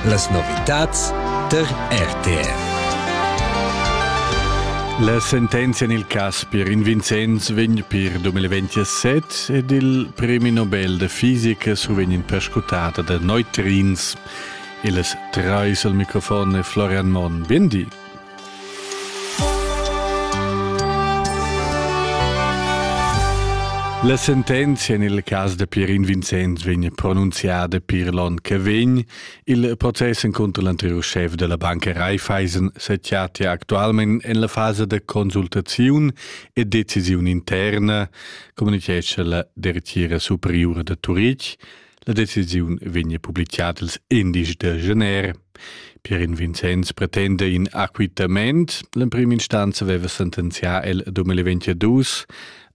Las novitads tar RTR. La sentenzia en il cas per in Vincenz vegn per 2027 ed il premi Nobel da fisica survegn perscrutata da neutrins. Il trais al microfon è Florian Monn. Bien di. La sentenzia en il cas da Pierin Vincenz vegn pronunziada pir l'onn che vegn. Il process encunter l'anteriur schef della banca Raiffeisen se chattia actualment en la fasa da consultaziun e decisiun interna, communichesce la dertira superiura da Turitg. La decisiun vegn publicada ils indici da gener. Pierin Vincenz pretende in acquittament. L'emprim instanza aveva sentenzià el 2022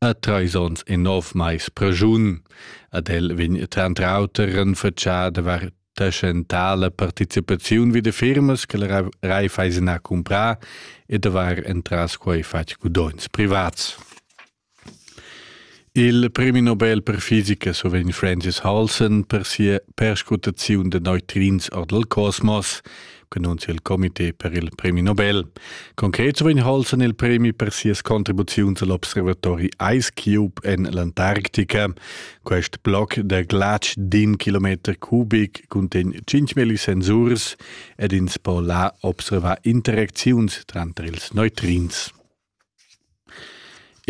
a treis onns e nov mais pregiun. Ad el vegn tranter auter renfatschà da var tschentala participaziun vi de firmas che la Raiffeisen ha comprà e da var entras quei fatg gudogns privats. Il premi Nobel per fisica survegn Francis Halson per sia perscrutaziun da neutrins or dal cosmos, annunzia il comité per il premi Nobel. Concret survegn Halson il premi per sias contribuziuns all'observatori Ice Cube en l'Antarctica. Quest bloc da glatsch d'in kilometer cubic cuntegn 5.000 sensurs ed ins po là observar interacziuns tranter ils neutrins.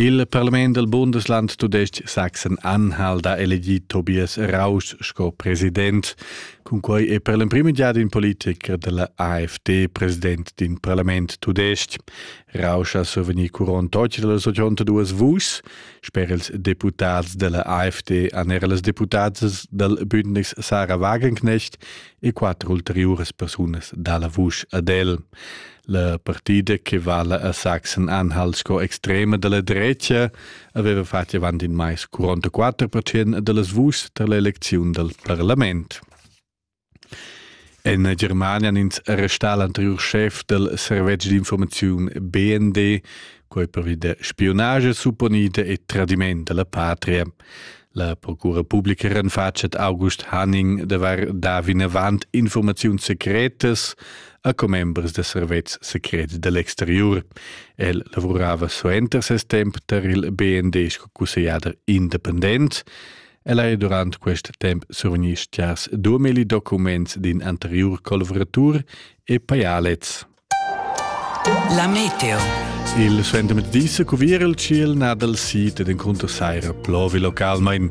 Il parlament dal Bundesland tudestg Sachsen-Anhalt ha elegì Tobias Rausch sco president. Cunquai è per l'emprim giada in politicher da la AfD president d'in parlament tudestg. Rausch ha survegnì curont deutsche dals 82 vuschs. Sper ils deputads da la AfD han era las deputadas dal Bündnis Sarah Wagenknecht e quatter ulteriuras persunas da la vusch ad el. La partida che vala a Sachsen-Anhalt sco extrema dalla drecia aveva fatg avant in mais 44% dallas vuschs tar l'elecziun dal parlament. En Germania han ins arrestà l'anterior chef dal servetsch d'informaziun BND, quei pervi da spionage supponida e tradiment dalla patria. La procura publica renfatschet August Hanning davar davinavant informaziuns secretas a commembers da servetschs secrets da l'exteriur. El lavurava suenter ses temp tar il BND sco cussegliader independent. El ha durant quest temp survegni stgars 2000 documents d'in anteriur colvratur e paialets. La meteo. Il suendermezdi se cuvir il ciel nad al sit ed encontro saira plovi localmain.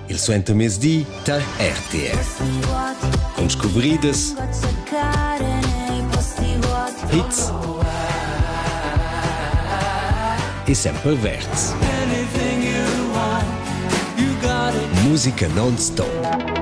Il suentermezdi tar RTS. Con scuvriedas hits e sempre verds. Musica non-stop.